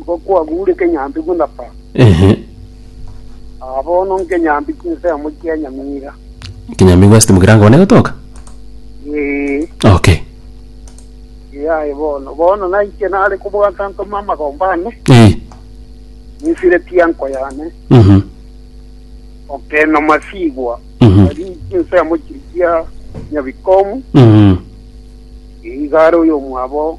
Ngokwagure kenyambi buna papa. Ehe. Ah, bono nkenyambi chinsemo chia nyamira. Kinyambi gwasete mokirango one gotoka? Ee, Okay. yaye bono. Bono naiche nare kobwata ntoma amagomba ane, Eh. nisire tianko yane, Mhm. okeno masigwa. Mhm. Ari chinsemo chiri chia nyabikomu, Mhm. igare oyo mwabo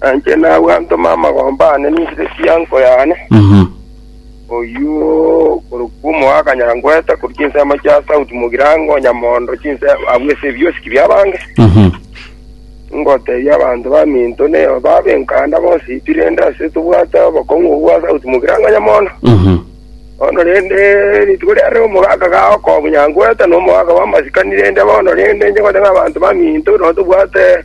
Na inche nagwe ntome amagomba aane ninse chiango yane, Mhm. oyio korokwa omoakanyangwete, korwa chinsemo chia sauti mogirango, nyamondo, chinse abwo ase ebiosiki bi'abange. Mhm. Ngotebia abanto baminto neo babe enkanda bonsi pi rende ase tobwate obokong'u obwo bwa sauti mogirango nyamondo. Mhm. Bono rende rituko riarire omogaka ga okonyangwete na omogaka bw'amasikani rende bono rende inche ngote ng'a abanto baminto nabo tobwate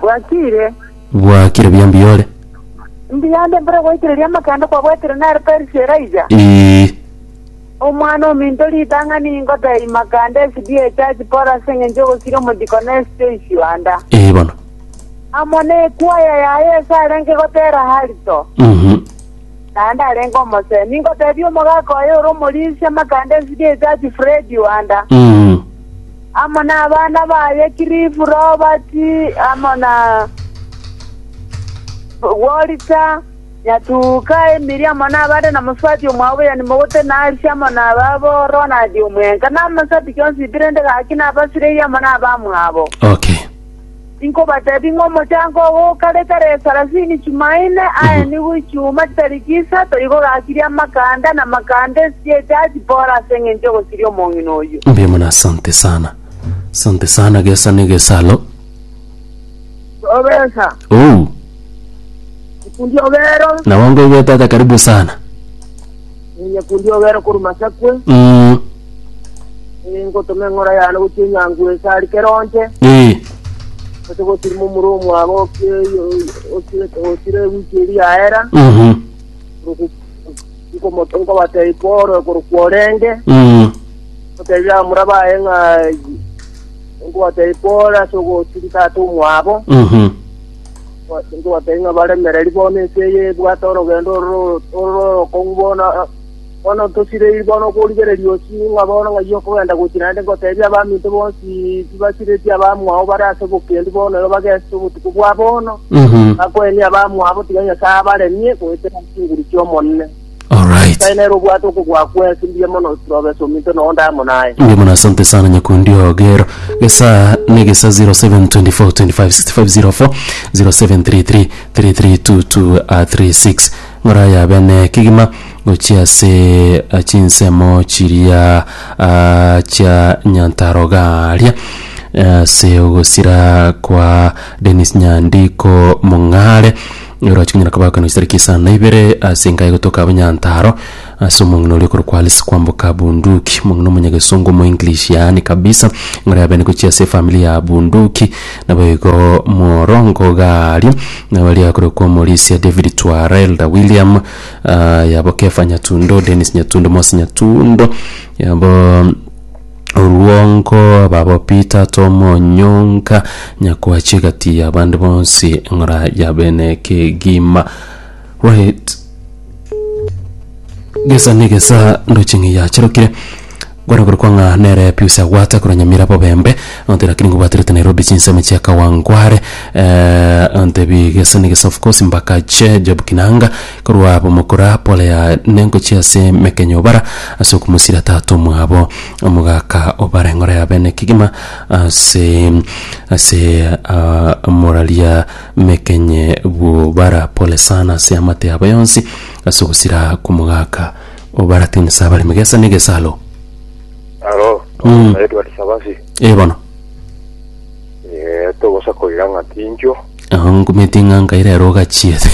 Bwakire. Bwakire buya mbiyore. Mbuya onde mbore goikereria amakanda kwabwatire naro Persia Elijah. Ii. Omwana ominto ritang'ani ingotee imakanda esidi ye church pore ase eng'encho ogosiria omochiko na esite isio anda. Ii bono. Amo ne ekwaya yaye ese arenge gotera harito. Mhm. Naende arenge omosee. Ningotebia omogaka oye ore omorisia amakanda esidi ye church Freddy Wanda. Mhm. amo nabana baye Kirifu, Robati, amo na Wolita, Nyatuuka, Emiri, amo nabande, na mosubati omwabo Yane mogote Narsi, amo nababo Ronald omwenga, na amasubati 'kionsi Ibrende gaki, na abasibei amo nabamwabo. Okay. Inkobatebia ng'a omochango ogo okare kare esarasini chimaine aye nigo ichiuma chitariki isato igo gakirie amakanda, na amakanda esiecha achipore ase engencho y'ogosiria omong'ina oyio. Mbuya mono asante sana. Asante sana gesa ne gesa alo. Obesa, Ou. ikundi obero. Nabo ngoigwete ata karibu sana. Inye kundi ogere korwa masakwe, Mm, eh, ngotoma eng'ora yane gochia enyangu ense ari keronche, eh, ase gosirima omura omwabo osire ewiki eri yaera, mhm, nkobatei kore korokwa orenge, mm, otebire abamura baye ng'a nkobatei kore ase ogosiri tata omwabo, mhm, Nkobateebia ng'a baremereiri bono ense eye ebwate orogendo oro orokong'u bono. Bono ntosireirie bono okorigereria ochi ng'a bono ng'ai okogenda gochia naende ngoteebie abaminto bonsi tibasiretie abamwao bare ase obokendu bono igo bagesete obotuko bwa bono, bakoenie abamwabo tiga Nyasae abaremie goetera chinguru chi'Omonene. All right. Nyasae nere obwate okobua kwesi mbuya mono Proves ominto noo ndamo naye. Mbuya mono asante sana nyakundi ogero. Gesa ne gesa 0724256504 0733332236 ngora yabe ne kigima gochia ase ah, chinsemo chiria ah, chia nyantarogaria ase ogosira kwa Dennis Nyandiko Mong'are Oroche konyara kobakana chisareki isano na ibere ase enka egotoka Abanyantaro ase omong'ina oria okorokwa Alice Kwamboka Bunduki, omong'ina omonyagesongo omoenglish yaani kabisa, ng'ora ya bene gochia ase efamili ya Bunduki. Naboigo morongo iga aria, nabo aria akorokwa Omorisia David Twara, Elder William, ah, yabo Kefa Nyatundo, Dennis Nyatundo, Mose Nyatundo, yabo Orwongo ababo Peter Tom Onyonga Nyakwachi gati ya bande bonsi ng'ora ya bene kegima Wait gesa ne gesa ndochi ng'ei yacharokire Kware kore kwa ng'a nere Pius Agwata korwa Nyamira Bobembe onte lakini ngobwaterete Nairobi chinsemo chia Kawangware eh, ontebi gesa ne gesa of course Mbakache Job Kinanga Korwa abwo mokora Polea nengochia ase emekenyo bara ase okomosira tata omwabo, omogaka o bareng'ora ya bene kegima ase ase ah, moraria mekenye bwo bara pole sana ase amate yabo yonsi ase ogosira kw'omogaka o bara tinisa abaremi gesa ne gesalo. Aro, Mm. Edward Sabasi, Eh, bono. eh, togosa koira ng'a tinchwo, Agho nkumeti ng'a nkaire ero ogachiete.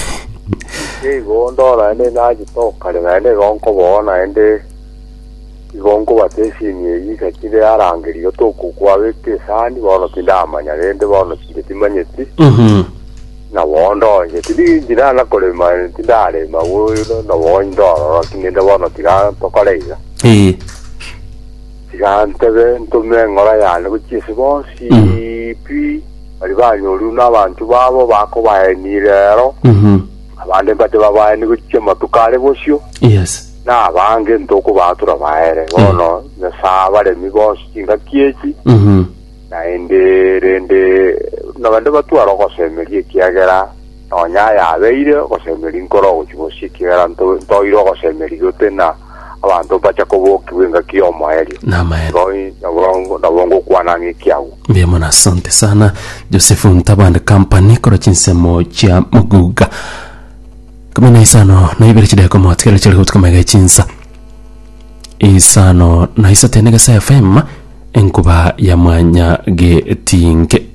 Nigo ndore naende nachete okare naende igo nkoboa naende igo nkobata esini eyio isakire arangeri igo tokokwa beka esani bono tindamanya rende bono chinde timanyeti Mhm. nabo ndonye tindi ndinana korema tindarema bono nabo ndorora tinende bono tiga tokore iga Eh. tiga ntebe ntume eng'ora yane gochia ase bonsi pi Baria banyorire nabanto babo bakobaenia rero, Mhm. abande mbate babaenie gochia amatuko are bosio, Yes. na abange ntokobaatura baere. Bono Nyasae abaremi bonsi chingaki echi, Mhm. naende rende naende batware ogosemeria ekiagera nonya ayabeire ogosemeria nkore ogochia bosio ekiagera nto- ntoire ogosemeria gotena abanto mbacha kobokigwa engaki y'omoerio. Namaene. Nabo- nabo- Nabo ngokwana ng'iki agwo. Mbuya mono asante sana Joseph Ntabande Company kora chinsemo chia Muguga kumi na isano na ibere chideko motigere chiri gotuka mega echinsa isano na isate negesa FM enkuba ya mwanya getinke